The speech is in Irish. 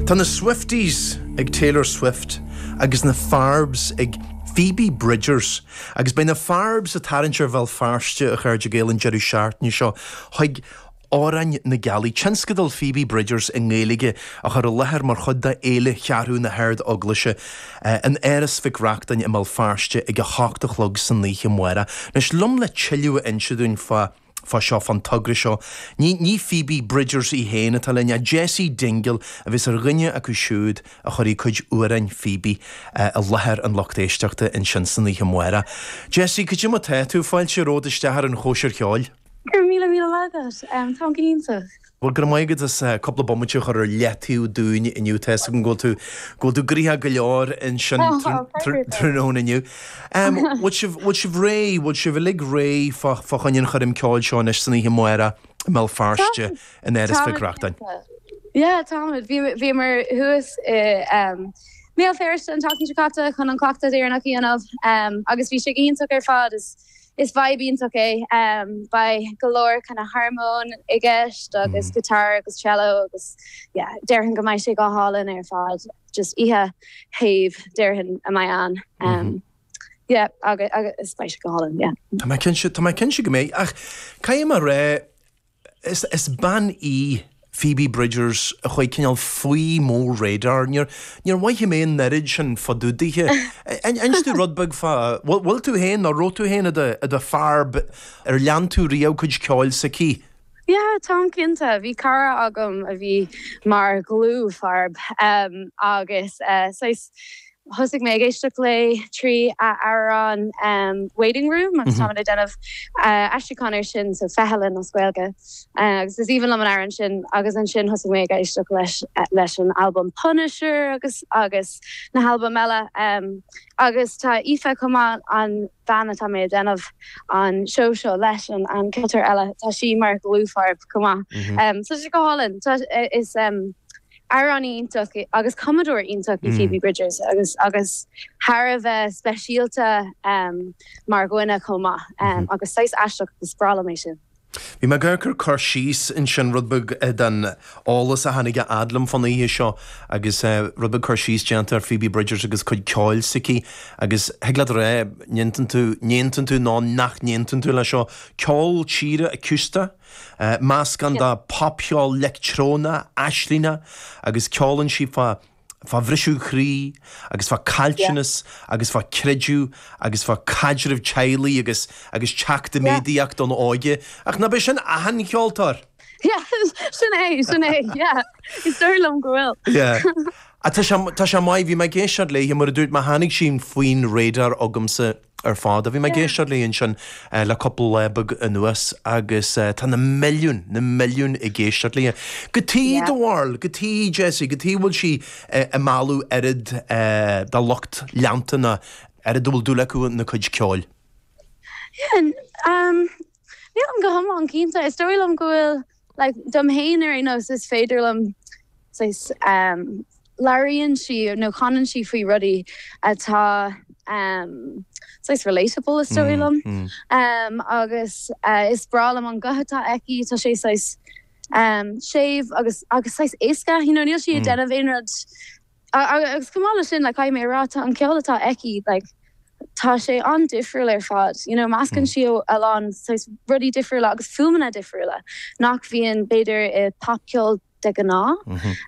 Tá na Swifties ag Taylor Swift agus na Farbs ag Phoebe Bridgers agus beidh na Farbs ag tarraingt ar Bhéal Feirste, a chairde Gael, an deireadh seachtaine seo chuig Árainn na Gealaí, tionscadal Phoebe Bridgers i nGaeilge a chur i láthair mar chuid de Fhéile Cheathrú na hArd-Eaglaise in Áras Mhic Reachtain i mBéal Feirste ag a hocht a chlog san oíche amárach. Anois liom le tuilleadh a inse dúinn fá dtaobh fá seo, fán togra seo. Ní, ní Phoebe Bridgers í féin atá linn, ach Jessie Dingle a bheas ar dhuine acu siúd a chuirfidh cuid d'amhráin Phoebe i láthair an lucht éisteachta ansin san oíche amárach. Jessie, cad é mar tá tú, fáilte romhat isteach ar an Chóisir Cheoil! Go raibh míle, míle maith agat. Táim go hiontach. Bhuel, go raibh maith agat as cúpla bomaite a chur ar leataobh dúinn inniu. Tá 'fhios agam go bhfuil tú, go bhfuil tú graithe go leor ansin tráthnóna inniu. Bhfuil sibh, bhfuil sibh réidh, bhfuil sibh uilig réidh fá choinne an choirm ceoil seo anois san oíche amárach i mBéal Feirste in Áras Mhic Reachtain? Táimid réidh. Yeah, táimid. Bhí, bhíomar thuas i mBéal Feirste an tseachtain seo caite chun an cleachtadh deireanach a dhéanamh agus bhí sé go hiontach ar fad. Is vibe iontach é. Beidh go leor kind of harmóin i gceist agus guitar agus cello agus yeah, déarfainn go mbeidh sé go hálainn ar fad. Just oíche shéimh déarfainn a bheidh ann. Yeah, agus beidh sé go hálainn, yeah. Tá mé cinnte, tá mé cinnte go mbeidh. Ach caithfidh mé a rá, Is bean í Phoebe Bridgers a chuaigh cineál faoi mo radar. Níor mhothaigh mé an oiread sin fá dtaobh daoithe. An inseoidh tú rud beag fá, bhfuil tú féin, nó raibh tú féin i do Farb, ar lean tú riamh cuid ceoil s'aici? Yeah, tá cinnte. Bhí cara agam a bhí mar dhlúth-Farb, agus saghas Thosaigh mé ag éisteacht léi trí a amhrán Waiting Room agus táimid ag déanamh aistriúcháin air sin, so Feithealann as Gaeilge, agus is aoibhinn liom an amhrán sin. Agus ansin thosaigh mé ag éisteacht leis leis an albam Punisher agus agus na halbaim eile. Agus tá Aoife chomh maith, an bhean atá mé ag déanamh an seó seo leis, an an ceoltóir eile, tá sí mar dhlúth-Farb chomh maith. So tá sé go hálainn, tá, is. Amhránaí iontach agus cumadóir iontach í Phoebe Bridgers agus agus thar a bheith speisialta mar dhuine chomh maith agus saghas aisteach agus is breá liom é sin. Bhí mé ag amharc ar cur síos ansin, rud beag den eolas a tháinig a fhad liom fán oíche seo agus rud beag cur síos déanta ar Phoebe Bridgers agus cuid ceoil s'aici agus thig leat a rá, an aontaíonn tú, an aontaíonn tú nó nach n-aontaíonn tú leis seo, ceol tíre acústach? Meascann dá popcheol leictreonach aislingeach agus ceolann sí fá bhriseadh croí agus fá caillteanas agus fá chreideamh agus fá chaidreamh teaghlaigh agus agus teacht i méadaíocht don óige. Ach nach b'é sin achan cheoltóir! Yeah, sin é, sin é, yeah. Is dóigh liom go bhfuil. Yeah. Ach tá sé, tá sé maith, bhí mé ag éisteacht léi nuair a dúirt, mar tháinig sí faoin radar agamsa, ar fad a bhí mé ag éisteacht léi ansin le cúpla lá beag anuas agus tá na milliúin, na milliúin ag éisteacht léi. Cad é do bharúil cad chuige, Jessie, cad chuige a bhfuil sí ag mealladh oiread dá lucht leanta ná oiread a bhfuil dúil acu ina cuid ceoil. Nílim go hiomlán cinnte. Is dóigh liom go bhfuil like, dom fhéin ar aon nós, is féidir liom saghas, em, labhraíonn sí nó canann sí faoi rudaí atá, em, saghas relatable is dóigh liom, em, agus, eh, is breá liom an guth atá aici, tá sé saghas, em, séimh agus, agus saghas éasca, you know, níl sí ag déanamh aon rud, Agus chomh maith leis sin, caithfidh mé a rá, tá an ceol atá aici, tá sé an-difriúil ar fad, you know, meascann sí a lán saghas rudaí difriúla agus fuaimeanna difriúla nach mbíonn b'fhéidir i bpopcheol de ghnáth.